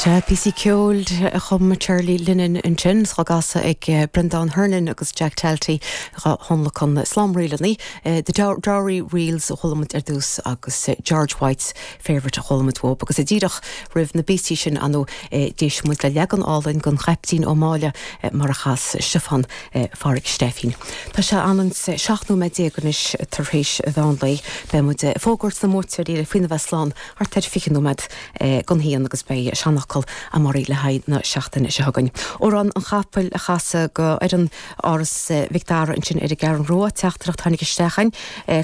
Sea, píosaí ceoil a chum Charlie Lennon ansin, dhá gcasadh ag Breandán Hernon agus Jack Talty, dhá thionlacan slám ríleanna, The Dowry Reels a chuala muid ar dtús agus George White's Favourite a chuala muid uaidh. Agus díreach roimh na bpíosaí sin anu d'éist muid le leagan álainn den Chaiptín Ó Máille mar a chas Stiofán Pháraic Stephen. Tá sé ionann's 17 nóiméad anois tar éis an mheán lae. Beidh muid ag fógairt na mbuaiteoirí le faoina bheith slán! thart ar 20 nóiméad gon haon agus beidh seanfhocal a'm arís le haghaidh na seachtaine seo chugainn. Amhrán an Chapaill a chasadh go fhoireann Áras Mhic Dara ansin ar an gCeathrú Rua. Teachtaireacht tháinig isteach a'inn,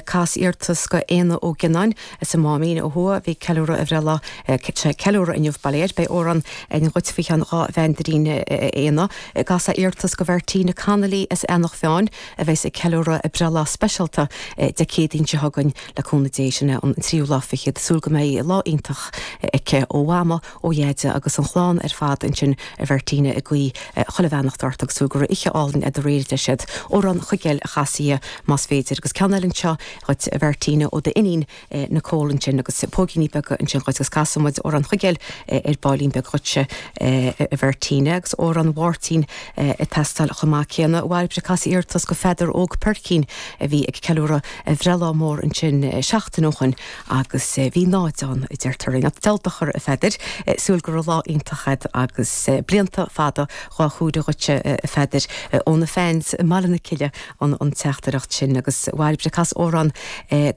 Cas iarrtas go Éanna Ó Gionnáin as an Máimín ó thuaidh. Bhí ag ceiliúradh a bhreithlá, tá sé ag ceiliúradh inniu, bail air. Beidh amhrán a'inn dhuit faoi cheann dhá mheandairín a Éanna. Cas iarrtas go Mhartina Connolly as Eanach Mheáin a bheas ag ceiliúradh a breithlá speisialta Dé Céadaoin seo chugainn. Le cúnamh Dé, sin é an tríú lá fichead. Súil go mbeidh lá iontach aici ó Mhama, ó Dheaide agus an chlann ar fad ansin, a Mhartina, ag guí chuile bheannacht ort agus súil go raibh oíche álainn a'd aréir a deir siad. Amhrán Chuigéil a chasadh, más féidir. Agus ceann eile anseo dhuit a Mhartina ó d'iníon Nicole ansin agus póigíní beaga ansin dhuit agus casfaidh muid Amhrán Chuigéil ar baillín beag dhuit a Mhartina. Agus Amhrán Mháirtín ag teastáil chomh maith céanna. Bhairbre, cas iarratas go Pheadar Óg Peircín a bhí ag ceiliúradh. bhreithlá mór ansin seachtain ó shoin agus bhí 0 ann, a deirtear linn. Diabhal dochar, a Pheadair. Súil go raibh lá iontach agat agus blianta fada dhá chomhaireamh dhuitse, a Pheadair, ó na fans i mBaile na Cille an teachtaireacht sin. Agus a Bhairbre, cas amhrán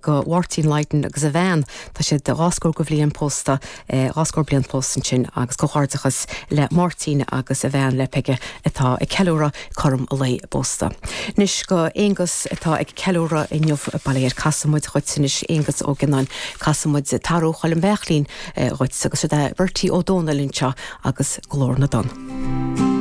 go Mháirtín Lydon agus a bhean, tá siad dhá scór go bhliain pósta. dhá scór bliain pósta ansin agus comhghairdeachas le Máirtín agus a bhean, le Peige, atá ag ceiliúradh cothrom lá a bpósta. Anois go Aonghus atá ag ceiliúradh inniu. Bail air, casfaidh muid dhuit anois Aonghus Ó Gionnáin, casfaidh muid Tarbh Choilm Bheachlaín dhuit, agus siod é Bertie Ó Domhnaill anseo agus Glór na dTonn.